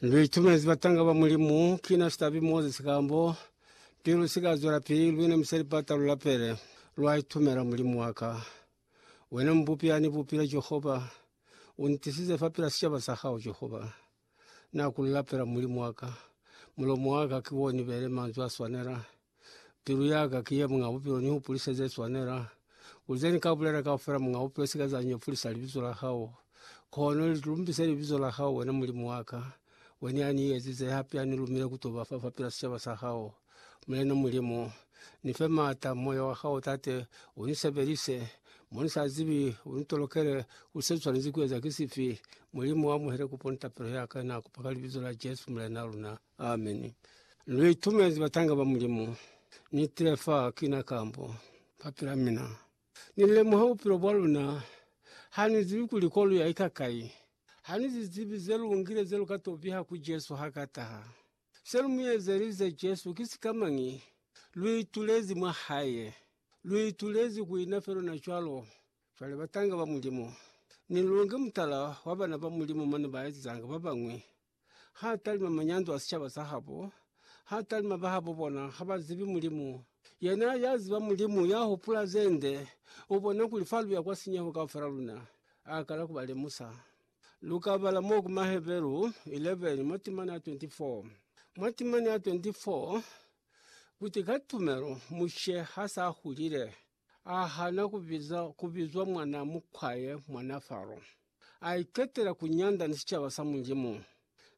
Lu itumezi batanga ba Mulimu, kina sitabi Moses kambo pili lu sika zwela pili, lune musali bata lu lapele. Lwa itumela, Mulimu wa ka, wena Mubupi ya ni bupile, Jehova, u ntisize fa pila sicaba sa hao, Jehova. Na ku lu lapela, Mulimu wa ka, mulomo wa ka ki wo ni bele manzwi a swanela. Pilu yaka ki ye Muñ'a Bupilo, ni hupulise ze swanela. Ku ze ni ka bulela kaufela, Muñ'a Bupilo, sika za nyefulisa libizo la hao. Kono li lumbise libizo la hao, wena Mulimu wa ka. Wena ya ni ezize, hape ya ni lumile ku to ba fa fapil'a sicaba sa hao. Mulena Mulimu, ni fe m'ata, Moya wa hao, Tate, u ni sebelise. Mo ni sa zibi, u ni tolokele kuli se swanezi ku eza ki sifi. Mulimu, amuhele kupo ni tapelo ya ka, na kupa ka Libizo la Jesu, Mulena luna. Amene. Ameni. Lu itumezi batanga ba Mulimu. Ni tile fa kina kambo ba pila mina. Ni lemuha bupilo bwa luna. Ha ni zibi kuli ko lu ya ika kai. Ha ni zi zibi ze lu ngile ze lu ka to biha ku Jesu ha ka taha. Se lu mu ezelize Jesu ki sikamañi? Lu itulezi mwa Hae. Lu itulezi ku ina fe luna cwalo. Cwale batanga ba Mulimu, ni lu nge mutala wa bana ba Mulimu mane ba ezanga ba bañwi Ha talima manyandu a sicaba sa habo, ha talima bahabo bona ha ba zibi Mulimu. Yena ya ziba Mulimu ya hupula ze nde, u bona kuli fa lu ya kwa sinyeho kaufela luna, a kala ku ba lemusa. Lu ka bala mo ku Maheberu 11 mwa timana ya 24. Mwa timana ya 24, Kuti ka tumelo Mushe ha s'a hulile, A hana ku biza ku bizwa mwana mukwaye mwana Faro. A iketela ku nyanda ni sicaba sa Mulimu.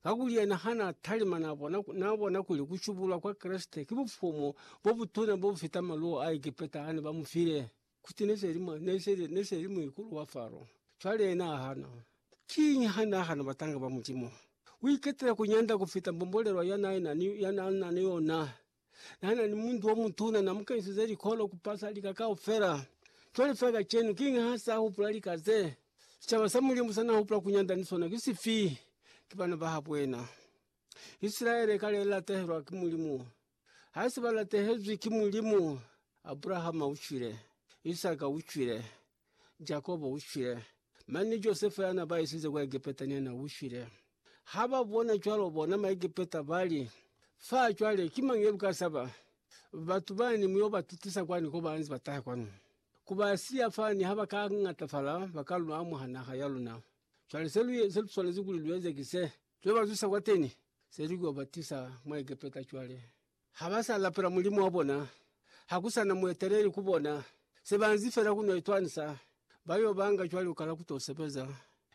Kakuli yena ha na talima na bona, na bona kuli ku shubulwa kwa Kreste ki bufumu bo butuna bo bu fita maluwo a Egepeta a ne ba mu file. Kuti ne se li mwa, ne se li, ne se li muikulu wa Faro. Cwale yena a hana. Kiñi ha na hana batanga ba Mulimu? U iketela ku nyanda ku fita mbombolelwa ya na e na ni, ya na na ni yona. Nana ni muntu omutuna, namukenisize likolo kupasa lika kaufela. Cwale fela kacenu, kiñi hasahupula lika ze? Sicaba sa Mulimu sanahupula kunyanda ni sona ki sifi? Ki bana bahabuena. Isilaele kale ilatahelwa ki Mulimu. Haisi balatehezwi ki Mulimu. Abrahama ucwile. Isaka ucwile. Jakobo u shwile, mane ni Josefa ya na ba isize kwa Egepeta ni yena u shwile. Ha ba bona cwalo, bona Maegepeta ba li, Fa cwale, ki mañi ye lu ka saba? Batu bani mu yo ba tutisa kwani ko ba nze ba taha kwanu? Ku ba siya fani ha ba ka ñatafala, ba ka lu amuha naha ya luna. Cwale se lu swanezi kuli lu eze ki se, lu yo ba zwisa kwateni, se lu yo ba tisa mwa Egepeta cwale. Ha ba sa lapela Mulimu wa bona, ha ku sa na mueteleli ku bona, se ba nzi fela ku no itwanisa, ba yo banga cwale lukala ku to sebeza.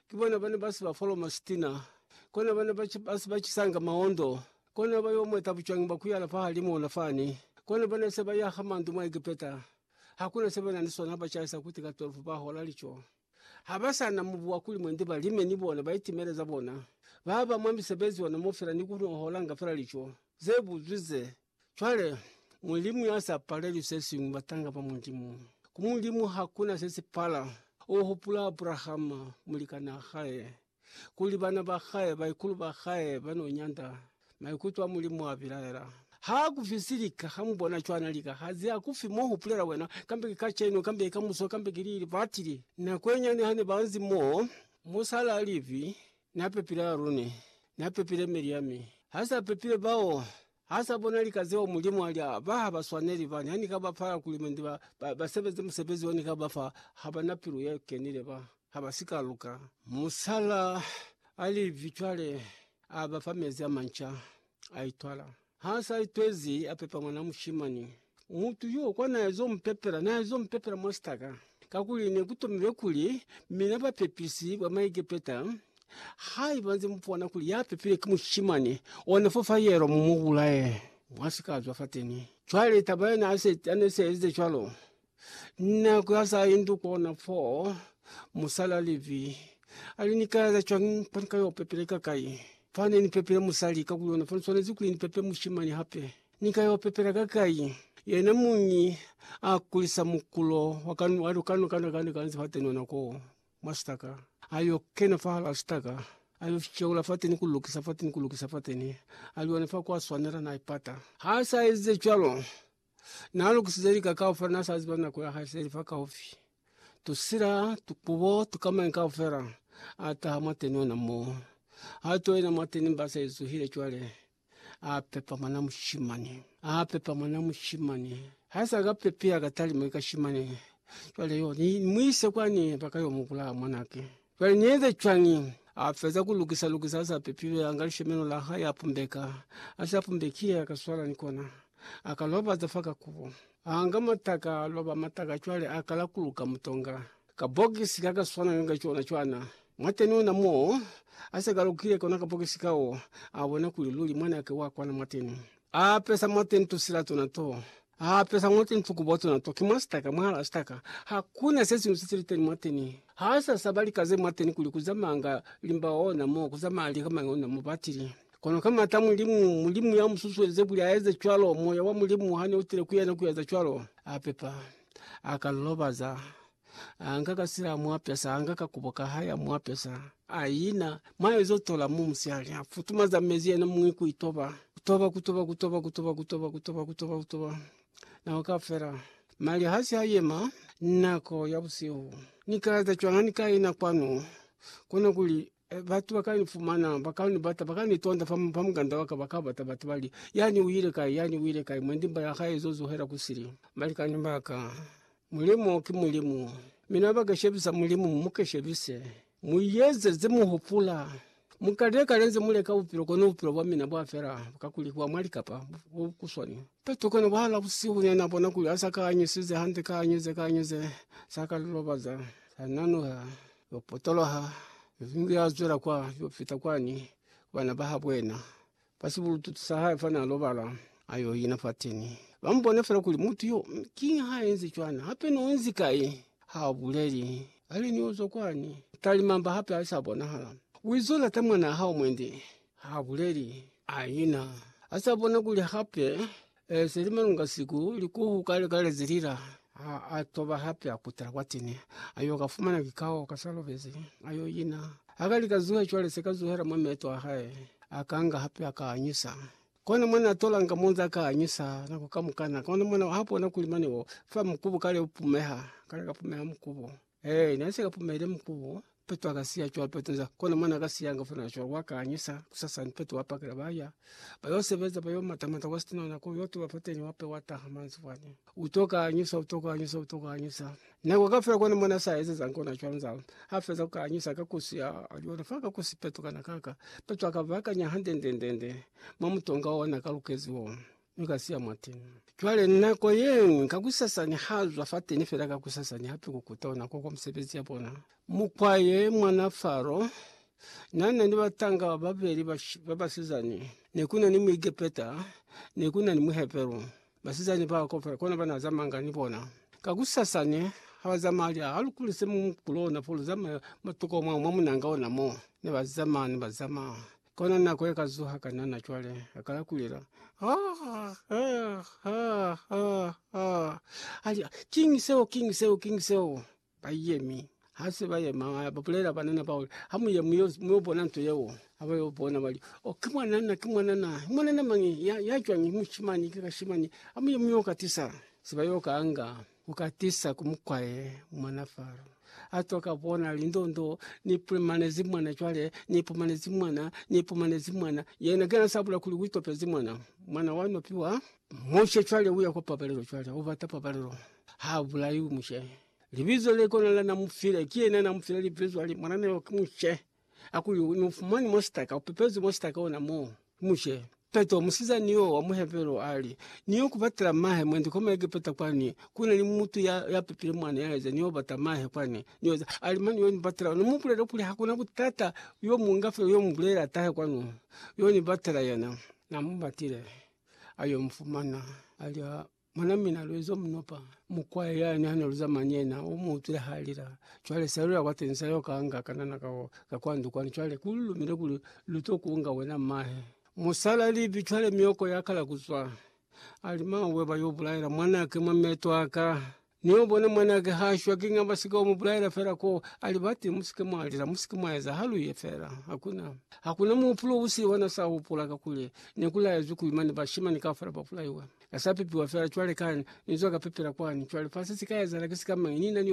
Ki bona ba ne ba si ba foloma sitina, kona ba ne ba si ba cisanga maondo, kona ba yo mweta bucwangi bwa ku yala fahalimu ona fani, kona ba ne se ba yaha mandu mwa Egepeta, ha ku na se ba na ni sona ha ba caisa kuti ka 12 ba hola lico. Ha ba sa na mubu wa ku lima nde ba lime ni bona, ba itimele za bona. Ba ba mwa misebezi yona mo fela ni ku holanga fela lico ze buzwi ze. Cwale, Mulimu ya sa paleli se siñwi, batanga ba Mulimu. Ku Mulimu ha ku na se si pala. U hupula Abrahama, mulikanaa hae. kuli bana ba hae, baikulu ba hae, ba n'o nyanda maikuto a Mulimu a bilaela. Ha ku fi si lika, ha mu bona cwana lika ha ziya ku fi mo hupulela wena, kambe ki kacenu, kambe ki kamuso, kambe ki lili batili. Nako ye nyane ha ne ba nzi mo, musala a livi, Na pepile Arune, Na pepile Miryami, ha sa pepile bao. Ha sa bona lika zeo Mulimu a li, A ba ha ba swaneli, ba ha ni ka ba fa agulimenti ba, ba, ba sebeze musebezi o ni ka ba fa, ha ba na pilu ye kenile, ba ha ba si ka luka. Musala a li, Vii, cwale a ba fa mezi a manca, a itwala. Ha sa itwezi, a pepa mwana mushimani. Mutu yo kwa naezo mupepela, naezo mupepela mwa sitaka, kakuli nekutomilwe kuli, mina bapepisi ba Maegepeta, haiba nze mupona kuli ya pepilwe ki mushimani ona fo fa yelo, mumubulaye, mwa si ka zwa fateni. Cwale taba yona ase, ane se ezize cwalo, nako ya sa indu kona fo, musali ali vi, ali, Ni ka eza cwañi fa ni ka yo pepela ikakai? Fane ni pepele musali, kakuli ona fa ni swanezi kuli ni pepe mushimani hape. Ni ka yo pepela kakai? Yena muñi a kulisa mukulo wa kanu wa lukanu kana kana kanzi fa teni ona ko mwa sitaka. A yo kena fa hala sitaka, a yo sheula fa teni ku lukisa fa teni ku lukisa fa teni, a li ona fa kwa swanela na ipata. Ha sa ezize cwalo, na lukisize lika kaufela, na sa ziba nako ya hae se li fa kaufi. Tusila, tukubo, tukamañi kaufela a taha mwa teni ona mo. Ha to yena mwa teni mba se zuhile cwale. A pepa mwana mushimani. A pepa mwana mushimani. Ha sa ka pepeha ka talima i kashimani, cwale yo ni mu ise kwani ba ka yo mu bulaya mwanake. Cwale ni eze cwañi? A feza ku lukisa lukisa a sa pepilwe, a nga lishemeno la hae a pumbeka. Ha si a pumbekile, a ka swala ni kona, a ka lobaza fa ka kubo. A nga mataka, a loba mataka cwale a kala ku luka mutonga. Kabokisi kakaswananga ka cona cwana. Mwateni ona mo asekalukile kona kabokisi kao, abona kuli luli mwanake wa kwana mwateni. Aapesa mwateni tusila tona to. Aapesa mwateni tukubo tona to. Ki mwa sitaka, mwala sitaka. Hakuna sesiñwi sesiliteni mwateni. Haasasaba lika ze mwateni kuli kuzamanga limba ona mo, kuzamanga lika mañi ona mo. Batili. Kono ka mata a Mulimu, Mulimu yamususuelize kuli aeze cwalo, Moya wa Mulimu hane utile kuyena kueza cwalo, apepa. aka lilobaza, anga ka sila mwapesa, anga ka kubo ka haya mwapesa. Ayina, mwayo zo tola mu musiali, afutuma za mezi yena mwi ku itoba. Kutoba, kutoba, kutoba, kutoba, kutoba, kutoba, kutoba, kutoba. Nako ka fela. Mali hasi ha yema, nako ya busihu. Ni ka eza cwanga ni ka ina kwanu? Kona kuli E, batu ba ka ni fumana, ba ka ni bata, ba ka ni tonda fa, fa muganda wa ka, ba ka bata, batu bali, Yani uile kai? Yani uile kai? Mwendi mba ya hae izo zuhela ku sili. Balikani ba ka, Mulimu ki Mulimu. Mi na ba keshebisa Mulimu, mu mu keshebise. Mu yeze ze mu hupula. Mu kalile kale nze mu leka bupilo, kono bupilo bwa mina bwa fela, ka kuli bwa mwa likapa, bu, bu kuswani. Petro kono bahala busihu ne na bona kuli ha sa ka anyusize hande, ka anyuze, ka anyuze, sa ka lilobaza, sa nanuha. Yo potoloha, Yozingu ya zwela kwa yo fita kwani ku bana ba habo yena. Fa sibulututu sa hae fana a lobala, a yo ina fateni. Ba mu bona fela kuli mutu yo, mi kiñi ha enzi cwana? Hape ni onzi kai? Ha a buleli. Kale ni ozwa kwani, talimamba hape ha sa bonahala. Uizo lata mwanaa hao mwendi? Ha a buleli. A ina. Ha sa bona kuli hape E se li malunga siku, likuhu kale kale ze lila. A, a toba hape a kutela kwa tene, a yo ka fumana kikao ka sa lobezi, a yo ina. Ha ka li ka zuhe cwale, se ka zuhela mwa meeto a hae, a ka nga hape a ka anyusa. Kona mwa na tolanga mo nza ka anyusa nako kamukana, kona mwa na ha bona kuli mane o fa mukubu kale u pumeha, kale ka pumeha mukubu. Ee, na sika pumele mkubu petu akasiya cwalo petu nza kona mwana akasiya nga funa cwalo wakanyisa kusasa mpetu wapakela baya bayo sebeza bayo mata mata wastona na kuyo tuwa fateni wape wata hamanzi fwane utoka anyisa utoka anyisa utoka anyisa na wakafia kona mwana sa ezi za nkona cwalo nza afeza ukanyisa kakusia aliona faka kusipetu kana kaka petu akava kanya hande ndende ndende mamu tonga ona kalukeziwa. mi ka siya mwateni. Cwale nako yeñwi kakusasa nihazwa fateni fela kakusasa nihape kukuta ona koko misebezi yabona. Mukwaye mwana Faro nana ni batanga babeli babasizani, nekuna ni Muegepeta, nekuna ni Muheberu. Basizani bao kaufela kona banazamanga ni bona. Kakusasa ne habazamaya lya halukuli se mu kulona fo luzamaya matuko mwao mwa munanga ona mo. Nebazamaya nebazamaya Kona nako ye ka zuha ka nana cwale a kala kulela Aah! Aah! Aah! Aah! Aah! Ali, King seo, king seo, king seo! Ba yemi. Ha se ba yema, ba ba bulela banana bao, Ha mu ye mu yo, mu yo bona nto yeo. Ha ba yo bona ba li, Oh, ki mwanana, ki mwanana. Mwanana mañi? Ya, ya cwañi? Mushimani, ki kashimani. Ha mu ye mu yo katisa. Se ba yo kanga. Ku katisa ku mukwa ye mwana Faro a twa ka bona lindondo, ni pumanezi mwana cwale, ni pumanezi mwana, ni pumanezi mwana. Yena kana sabula kuli u topezi mwana, mwana wa nopiwa. Mushe cwale uya kwa pabalelo, cwale u bata pabalelo, ha bulaiwi mushe. Libizo le kona la na mu file, ki yena na mu file libizo, ali mwanana yo ki Mushe. Akuyo unofumani mwa sitaka upepezi mwa sitaka ona mo mushe. Peto musiza nio wa muhepelo ali nio kubatela mahe mwendi koma Egepeta kwani kuna ni mutu ya ya pepile mwana ya eza nio bata mahe kwani nioza alimani yoni batela no mupulelo kuli hakuna butata yo munga fyo yo mubulela tahe kwanu yoni batela yena na mubatile ayo mfumana alia Mwana mina Lwezo Mnopa mukwaya yani hane luzama ni yena umuutwile halila. Cwale se alula kwa teni sa yo kaanga kanana kao ka kwa ndu kwani. Cwale ku lumile kuli lu to kunga wena mahe. Musala libi cwale myoko ya kala kuzwa. Ali, Mawe, ba yo bulaela mwanake mwa meto aka. Ni yo bona mwanake ha shwa, kiña ba si ka mu bulaela fela ko a li ba teñi? Mu si ke mwa lila, mu si ke mwa eza haluye fela. Hakuna, hakuna muhupulo u sili wa na sa hupula, kakuli ne ku laezwi kuli mane bashimani kaufela ba bulaiwe. Ka sa pepiwa fela cwale ka ni zwa ka pepela kwani. Cwale fa se si ka ezahala ki sikamañi? Ni na ni yona.